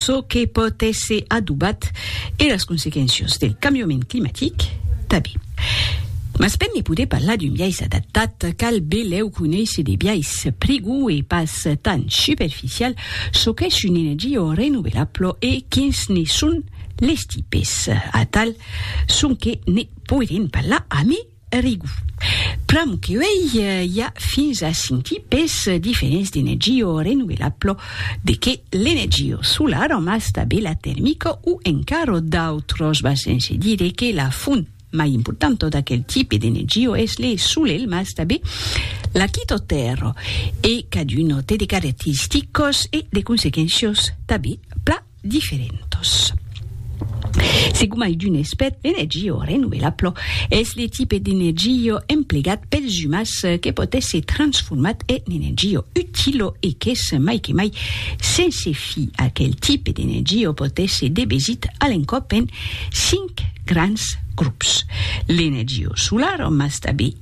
çò que pòt èsser adobat e las consequéncias del cambiament climatic tanben. Mas per ne poder parlar d'un biais adaptat, cal belèu conéisser de biais prigòu e pas tan superficial çò qu'es una energia renovelabla e quins ne son les tipes. Atal sonque ne poirem parlar amé Rigu. Pr'amor que uèi i a fins a cinc tipes diferents d'energió renovelablo, de qué l'energió solara mas tabé la termica o encaro d'autros va sense dire que la font mai importanta d'aquel tipe d'energió es le solelh mas tabé la quito tèrra e caduno té de caracteristicos e de consequéncios tabé pla diferentos. Se gomai d'un espèt d'energia renovelabla, es le tipe d'energia emplegat pels umans que pòt èsser transformat en energia utila e qu'es mai que mai sense fi. Aquel tipe d'energia pòt èsser debesit a l'encòp en cinc grands grops, l'energia solara mas tanben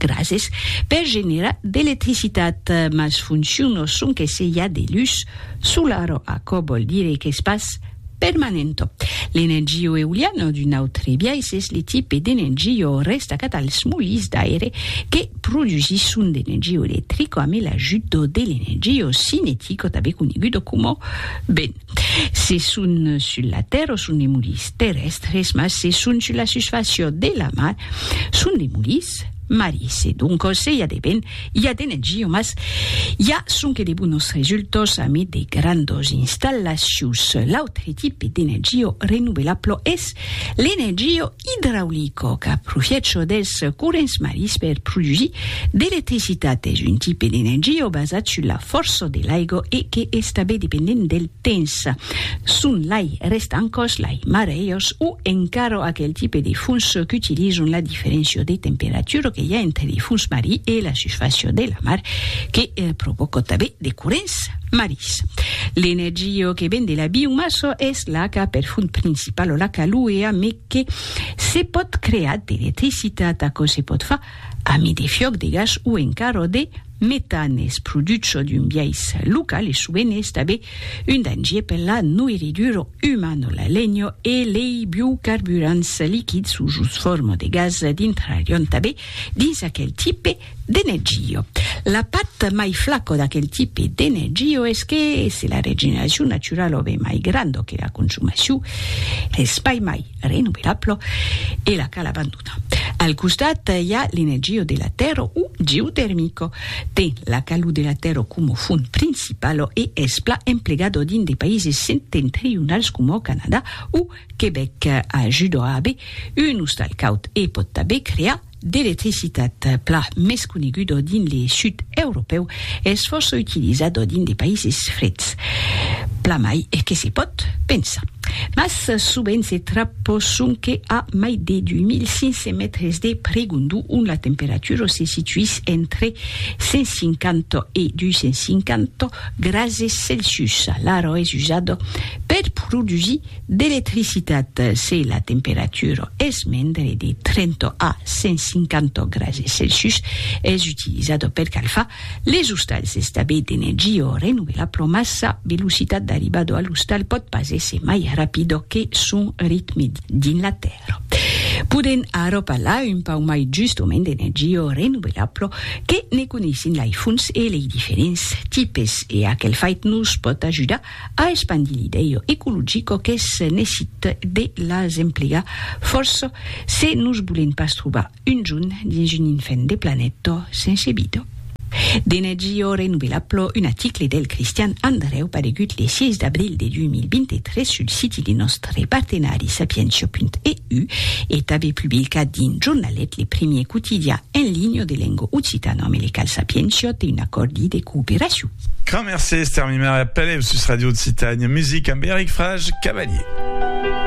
Grases per generar d'electricitat, mas fonciono sonque se i a de lus solaro, aquò vòl dire qu'es pas permanento. L'energio euliano d'un autre biais es le tipe d'energio restacat als molins d'aire que produsisson d'energio electrico ame l'ajudo de l'energio cinetico tanben conegudo coma vent. Se son sul la tèrra son de mulis terrèstres, mas se son sul la susfàcia de la mar son de mulis maris. E doncos se i a de vent, i a d'energia, mas i a sonque de bonos resultats amid de grandas installacions. L'autre tipe d'energia renovelabla es l'energia Idraulico qu'a profiècho dels corrents marins per produsir d'electricitat es un tipe d'energia basat sus la fòrça de l'aiga e que es tanben dependent del temps. Son lai rèstan còs, lai marejos o encara aquel tipe de fons qu'utilizan la diferéncia de temperatura que i a entre de fons marin e la susfàcia de la mar que provòca tanben de corrents. Marís. L'energia que ven de la biomassa es l'aca per font principala, l'aca luea, me que se pòt crear d'electricitat. Aquò se pòt far amé de fiòc de gas o encara de metan. Es produch çò d'un biais local e sovent es tabé un dangier per la noirridura umana. La lenha e lei biocarburants liquids o jos forma de gas dintrarion tabé dins aquel tipe De Neggio. La part mai flaco d'aquel tipe de Neggio es que se la regeneracion naturala o be mai granda que la consumacion, es pas mai renovelabla e la cal abandonar. Al costat i a l'energia de la tèrra o geotermica. Ten la calor de la tèrra coma font principala e es plan emplegada dins de païses septentrionals coma Canadà o Quebec. Ajuda a aver un ostal caud e pòt tanben crear d'electricitat pla mès conegudo dins le sud europèu es fòrça utilizado dins de païses freds, pla mai que se pòt pensar. Mas sovent se trapò sonque a mai de 2500 mètres de pregondor ont la temperatura se situís entre 150 e 250 grases Celsius. L'aro es usado per produsir d'electricitat se la temperatura es mendre de 30 a 150 grase Celsius, es utilizada per calfar les ostals d'estabè d'energia renovelabla mas sa velocitat d'arribada a l'ostal pòt pas èsser mai rapida que son ritme dins la tèrra. Podèm ara parlar un pauc mai justament d'energia renovelabla que ne coneissin lei fonts e lei diferents tipes e aquel fait nos pòt ajudar A espandir l'idèu ecologico qu'es nesit de las emplegar fòrça se nos bolen pas trobar un jon dins un infèn de planèta sense vida. D'energia renovelabla, un aticle del Cristian Andrèu paregut le 6 d'abril de 2023 sul siti de nòstre partenari sapientia.eu e tanben publicat dins Jornalet, le primièr quotidian en linha de lenga occitana amb le qual Sapientia te un acòrdi de cooperacion. Gran mercés, Termimer e Pelèu sus Radio Occitània Music amb Eric Frage Cavalier.